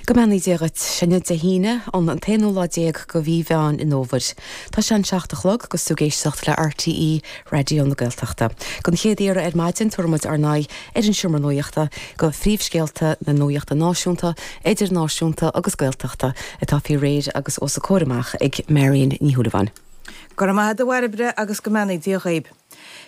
Go mbeannaí Dia dhuit. Sé inniu Dé hAoine, an t-aonú lá déag de mhí Mheán an Fhómhair. Tá sé an seacht a chlog agus tú ag éisteacht le RTÉ Raidió na Gaeltachta. Don chéad iarraidh ar maidin tabharfaidh muid ár n-aghaidh ar an seomra nuachta do phríomhscéalta na nuachta náisiúnta, idirnáisiúnta agus Gaeltachta atá faoi réir agus os a comhair amach ag Marion Ní Shúilleabháin. Go raibh maith a'd a Bhairbre agus go mbeannaí Dia dhaoib.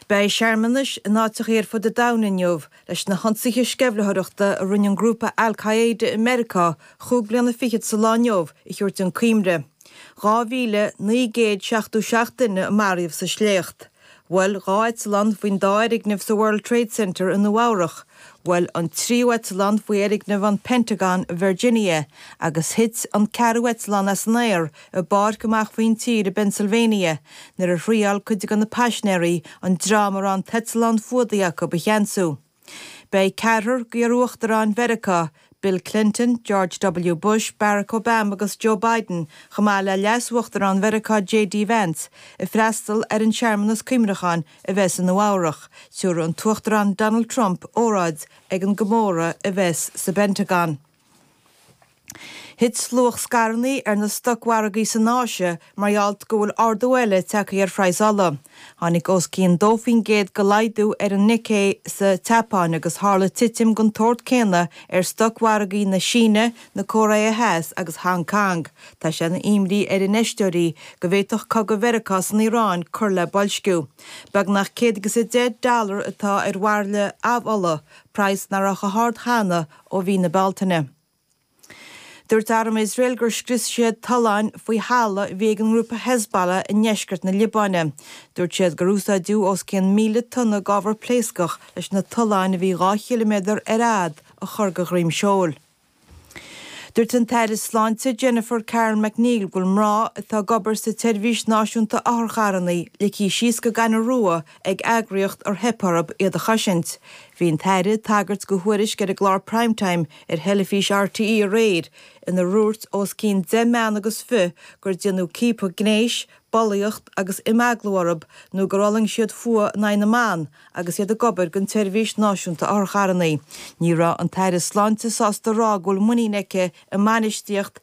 Beidh searmanais in áiteachaí ar fud an domhain inniu Leis na hionsaithe sceimhlitheoireachta a rinne an grúpa Al-Qaeda i Meiriceá chúig bliana fichead sa lá inniu a thabhairt chun cuimhne. 2,977 duine a maraíodh sa sléacht. Bhuail dhá eitleán faoin dá fhoirgneamh sa World Trade Center i Nua-Eabhrac. Bhuail an tríú eitleán faoi fhoirgneamh an Pentagon i Virginia agus thit an ceathrú eitleán as an aer i bpáirc amach faoin tír i bPennsylvania nuair a thriáil cuid de na paisinéaraí an dream a raibh an t-eitleán fuadaithe acu a cheansú. Beidh ceathrar d'iar-uachtaráin Mheiriceá, Bill Clinton, George W. Bush, Barack Obama agus Joe Biden, chomh maith le leas-uachtarán Mheiriceá JD Vance, ag freastal ar an searmanas cuimreacháin a bheas i Nua-Eabhrac. Tiúrfaidh an tUachtarán Donald Trump óráid ag an gcomóradh a bheas sa bPentagon. Thit luach scaireanna ar na stocmhargaí san Áise mar gheall go bhfuil ardú eile tagtha ar phraghas ola. Tháinig os cionn 2 faoin gcéad de laghdú ar an Nikkei sa tSeapáin agus tharla titim den tsórt céanna ar stocmhargaí na Síne, na Cóiré Theas agus Hong Cong. Tá sé ina imní ar infheisteoirí go bhféadfadh cogadh Mheiriceá san Iaráin cur le boilsciú. Beagnach 110 dollar atá ar bhairille amhola, praghas nach raibh chomh hard cheana ó mhí na Bealtaine. Dúirt arm Iosrael gur scrios siad tolláin faoi thalamh a bhí ag an ngrúpa Hezbollah i ndeisceart na Liobáine. Dúirt siad gur úsáideadh os cionn 1,000 tonna d'ábhar pléascach leis na tolláin a bhí dhá chiliméadar ar fhad a chur de dhroim seoil. Dúirt an tAire Sláinte Jennifer Carroll MacNeill go bhfuil mná atá ag obair sa tSeirbhís Náisiúnta Otharcharranna ligthe síos go gaineamh rua ag eagraíocht ar theip orthu iad a chosaint. Bhí an tAire ag tagairt do thuairisc ar an gclár Prime Time ar theilifís RTÉ aréir inar dhúirt os cionn deich mbean agus fiche gur déanadh ciapadh gnéis, bulaíocht agus imeaglú orthu nó gur fhulaing siad fuath in aghaidh na mban agus iad ag obair don tSeirbhís Náisiúnta Otharcharranna. Ní raibh an tAire Sláinte sásta a rá go bhfuil muinín aici i mbainistíocht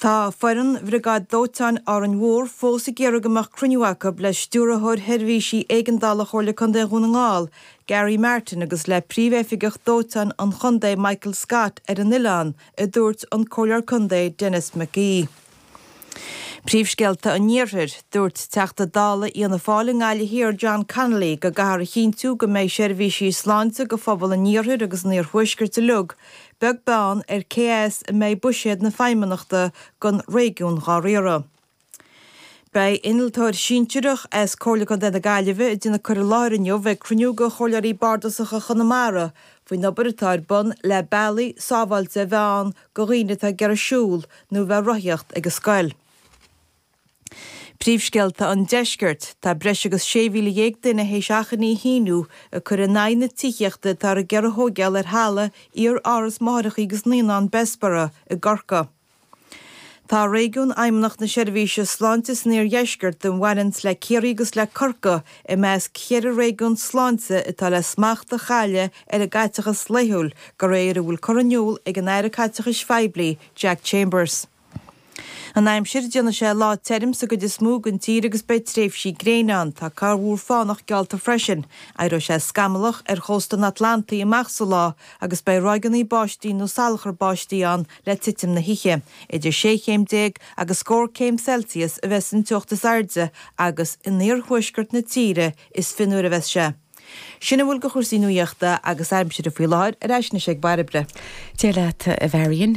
Tá foireann Bhriogáid Dóiteáin Árainn Mhór fós ag iarraidh go mbeadh cruinniú acu le Stiúrthóir Sheirbhísí Éigeandála Chomhairle Contae Dhún na nGall, Gary Martin agus le Príomhoifigeach Dóiteáin an Chontae, Michael Scott ar an oileán, a dúirt an Comhairleoir Contae Denis McGee. Príomhscéalta an Iarthair. Dúirt Teachta Dála Fhianna Fáil i nGaillimh Thiar John Connolly go gcaithear a chinntiú go mbeidh seirbhísí sláinte do phobal an iarthair agus an iarthuaiscirt uilig, beag beann ar cé as a mbeidh buiséad na Feidhmeannachta don réigiún dhá riaradh. Beidh innealtóir sinsearach as Comhairle Contae na Gaillimhe a dhéanfaidh cur i láthair inniu ag cruinniú de Chomhairleoirí Bardasacha Chonamara faoin obair atá ar bun le bealaí sábháilte a bheith ann do dhaoine atá ag iarraidh siúl nó a bheith rothaíocht ag an scoil. Príomhscéalta an Deiscirt, tá breis agus 16,000 duine théis achainí a shíniú ag cur in aghaidh na tithíochta atá le gairid a thógáil ar thalamh iar-áras máithreacha agus naíonán Bessborough i gCorca. Tá réigiún Fheidhmeannacht na Seirbhíse Sláinte san Iardheisceart a bhaineann le Ciarraí agus le Corca i measc cheithre réigiún sláinte atá le smacht a chailleadh ar a gcaiteachas laethúil de réir a bhfuil curtha in iúl ag an Aire Caiteachais Phoiblí, Jack Chambers. An aimsir, déanfaidh sé lá tirm sa gcuid is mó den tír agus beidh tréimhsí gréine ann. Tá corrmhúr fánach geallta freisin. Éireoidh sé scamallach ar chósta an Atlantaigh amach sa lá agus beidh ráigeanna báistí nó salachar báistí ann le titim na hoíche. Idir sé chéim déag agus scór céim Celsius a bheas an teocht is airde agus in iarthuaisceart na tíre is fionnuaire a bheas sé. Sin a bhfuil de chúrsaí nuaíochta agus aimsire faoi láthair. Ar ais anois ag Bairbre. Dia leat, a Mharion.